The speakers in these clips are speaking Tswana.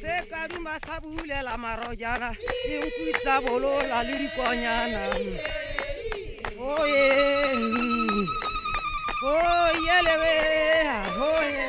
se ka duma sa bulela marojana dinku tsa bolola le dikonyana oye oyelebe oye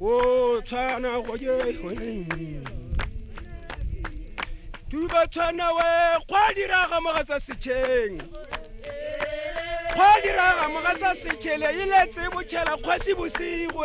o tshwana go je tuba tshwana we kgwa diraga mogatsa setšheng kgwa diraga mogatsa setšhele e letse botšhela kgwasi bosigo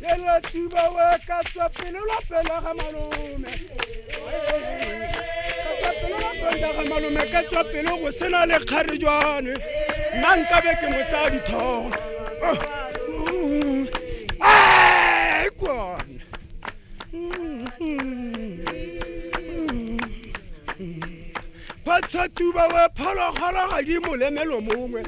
lelatiba we ka tswa pele la pela ga malome ga malome ka tswa pele go sena le kgarejwane nna nkabe ke mo tsaya dithogo kone batsatuba we phologolo ga di molemelo mongwe